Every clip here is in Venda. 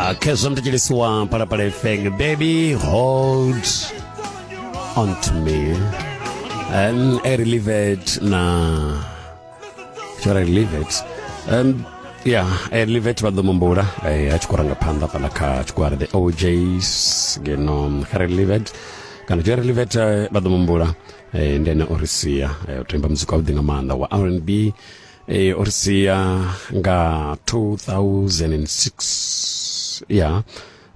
Ah, khezwo mtitshilisiwa phalaphala efeng baby hold on to me um, i relieve it na should i relieve it um, ya i relieve it vha ḓo mumbula eh, a tshi khou ranga phanḓa fhala kha tshigwara the ojs ngeno kha relieve it kana tshi relieve it eh, vha ḓo mumbula eh, ndi ene o ri sia eh, u tou imba muzika wavhuḓi nga maanḓa wa r and b e, o ri sia nga 2006 ya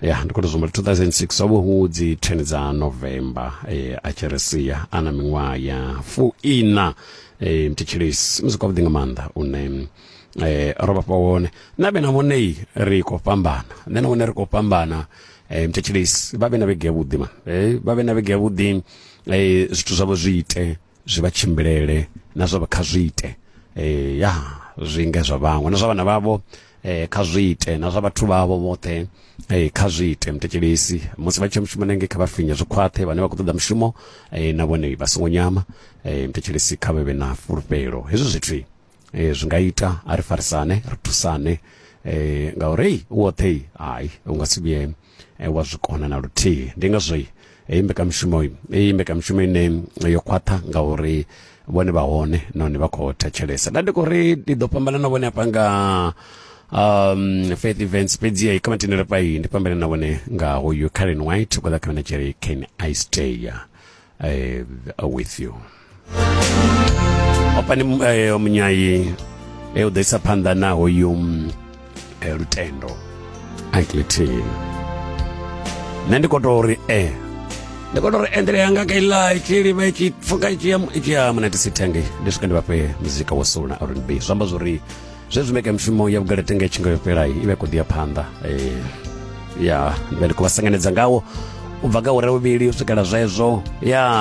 ya ndi khou tou zwi humbula 2006 ho vha hu dzi 10 dza november e, a tshi ri sia a na miṅwaha ya fuiṋa e, mthetshelesi musi kwavhuḓi nga maanḓa une eh ro vhafha wone na vhe na vhone ri khou fhambana nṋe na vhone ri khou fhambana eh mthetshelesi vha vhe na vhege yavhuḓi ma eh vha vhe na vhege yavhuḓi eh zwithu zwavho zwi ite zwi vha tshimbilele na zwa kha zwi ite eh ya zwi nga zwa vhaṅwe na zwa vhana vhavho eh kha zwi ite na zwa vhathu vhavho vhoṱhe eh kha zwi ite mtekelesi musi vha tshi mushumo nenge kha vha finye zwi khwaṱhe vhane vha khou ṱoḓa mushumo eh na vhone vha songo nyama eh mtekelesi kha vhe vhe na fulufhelo hezwi zwithu eh, zwi nga ita a ri farisane ri thusane eh, ngauri ei u woṱhe hai u nga si vhuye eh, wa zwi kona na luthihi ndi ngazwo heyi mbekamishumo iyi mbekamishumo ine yo khwaṱha ngauri vhone vha hone nahone vha khou thetshelesa nda ndi khou ri ndi ḓo fhambana na vhone hafha nga um faith events fhedzi ya kama tendele pai ndi pambele na vhone nga hoyu Karen White kwa kha na Jerry Ken Ice Day I, uh, with you opani eh, munyayi e u ḓo isa phanḓa na hoyu mm, eh, lutendo anklitin nṋe ndi koto uri e ndi koto uri endele yanga ka ila itshi livha itshi pfuka itshi ya itshi ya munatisi thenge ndi swika ndi vhafhe muzika wa soul na rnb zwi amba zwori zwezwi mbekanyamushumo ya vhugala tenge tshi nga yo fhela i vha i khou ḓi ya phanḓa eh, ya ndi vha ndi khou vha sanganedza ngawo u bva kha hure vhuvhili u swikela zwezwo ya